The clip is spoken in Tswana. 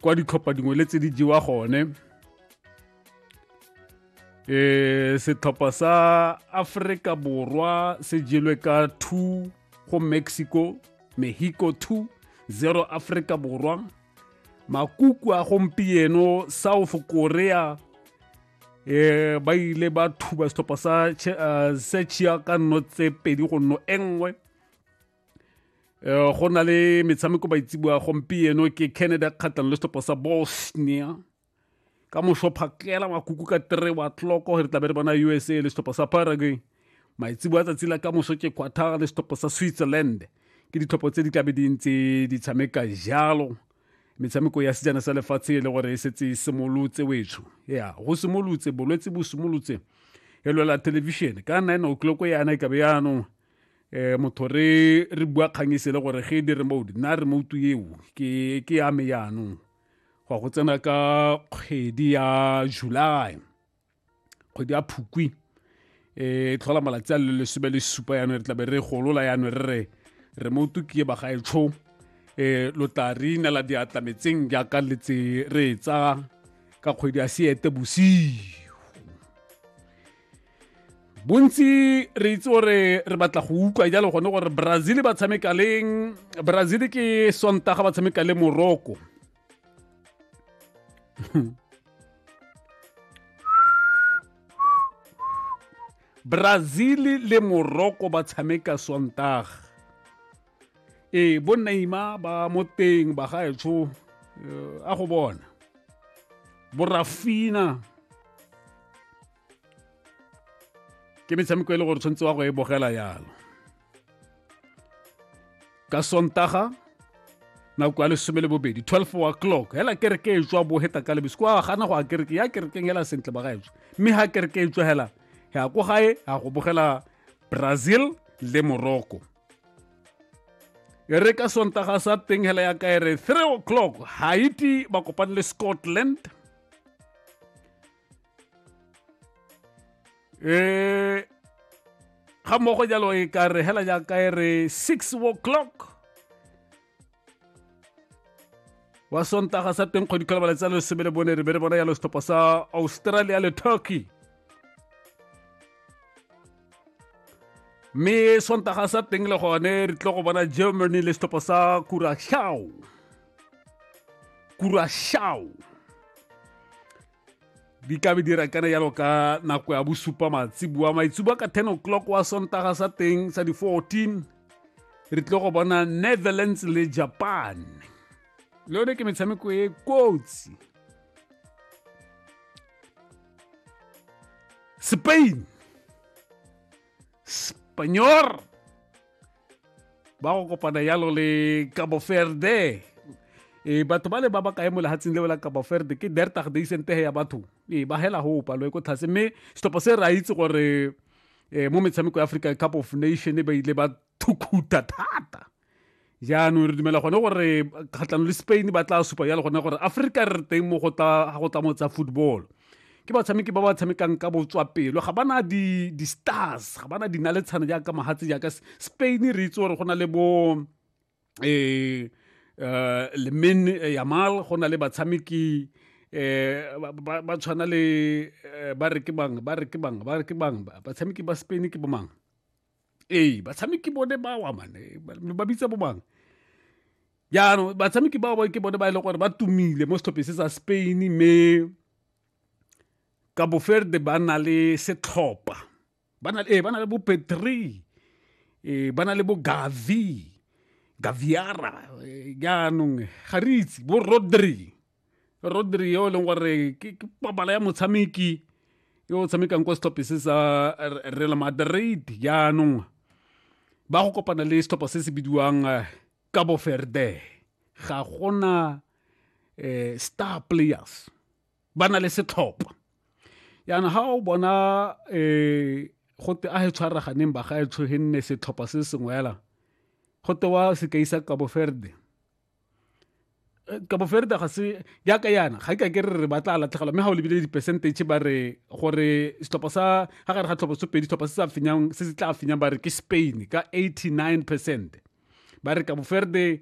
kwa ditlhopha dingwe le tse di jewa gone eh setlhopha sa Africa Borwa se jelwe ka 2 go Mexico Mexico 2 0 Africa Borwa makuku a gompieno South Korea eh ba ile ba thuba setlhopha sa eh, Czechia ka nno tse pedi go nno engwe eh, go na le metshameko baitseboa gompieno ke canada kgatlhang le setlhopha sa bosnia ka moso phakela makuku ka three wa tloko re tlabe re bona usa le setlhopha sa paraguay maitseboa tsatsi la ka moso ke quatar le setlhopha sa switzerland ke ditlhopho tse di tlabe di ntse di tshameka jalo metshameko ya sejana sa lefatshe e le gore e setse e simolotse wetsho ya go simolotse bolwetse bo simolotse e lwela thelebišene ka nine o'clock yana e kabe yaanong eh motho re re bua kgang e gore ge e di remote nna remote eo ke ke ya me yaanong go go tsena ka kgwedi ya july kgwedi ya phukwi e tlhola malatsi a le lesome le supa yaanong re tlabe re golola yaanong re re remote ke e bagaetsho um e, lo tla re inela diatla metseng jaaka letse re e tsa ka kgwedi ya seete bosigo bontsi re itse gore re batla go utlwa jalo gone gore brazil ba tshameka leng brazil ke sontaga ba tshameka le morocco brazil le morocco ba tshameka sontaga ee bo neima ba mo teng ba gaetsho eh, a go bona borafina ke metshameko e le gore tshwanetse wa go e bogela yalo ka sontaga nako ya lesome le bobedi 12 wa clock hela kereke e tswa boheta ka lebesi kwa gana go a kereke ya kerekeng hela sentle ba gaetsho mme ha kereke e tswa hela ya ko gae ya go bogela brazil le morocco e re ka sontaga sa teng hela ya ka e re 3 o'clock haiti ba kopane le scotland eh ga mmogo jalo e ka re hela jaaka e re 6 o'clock wa sontaga sa teng kgwedi ka lebala tsa lesome le bone re be re bona yalo setlhopha sa australia le turkey mme sontaga sa teng le gone re tlo go bona germany le setlhopha sa kurashao kurashao di ka be di rakana yalo ka nako ya bosupa matsibua maitsibua ka 10 o'clock wa sontaga sa teng sa di-14 re tlile go bona netherlands le japan le yone ke metshameko e kotsi spain spagnor ba go kopana yalo le cabo verde e batho ba le ba ba kae mo lehatsheng leo la cabo verde ke dertag de isentege ya batho e ba hela go palo e ko tlhase mme setlhopha se re a itse gore um mo metshameko ya africa cup of nation ba ile ba thukhuta thata jaanong re dumela gone gore kgatlhano le spain ba tla supa yalo gone gore africa re teng mo go tla mo tsa football ke batshameki ba ba tshamekang ka botswapelo ga ba na di-stars ga ba na dinaletshana jaaka mahatse jaaka spain re itse gore go na le bo um eh, eh, lemin eh, yamal go na le batshameki um ba tshwana le ba re ke bang ba re ke bang ba re ke bang batshameki ba spain ke bomang ee batshameki bone ba wa mane ba bitsa bo bang jaanong batshameki bao ba ke bone ba e leng gore ba tumile mo setlhopheng se sa spain mme ka boferde ba na le setlhopa ba na ee, le bo petri ee, ba na le bo gavi gaviara ee, jaanong ga re itse bo rodri rodri yo e leng gore ke papala ya motshameki yo o tshamekang kwa setlhophe se sa real madrid jaanong ba go kopana le setlhopha se se bidiwang eh, cabo verde ga gona eh, star players ba na le setlhopha yana ga o bona um gote a e tshwaraganeng ba ga e tshoge nne setlhopha se sengwe fela gote wa sekai sa cabo verde eh, kabo ferda ga se yaka yana ga ka ke re re batla latlhegelwa mme ga o lebile di-percentage ba re gore setlhopha sa ga gare ga tlhopha sopedi setlhopha se se se tla fenyang ba re ke spain ka 89 percent ba re kabo ferde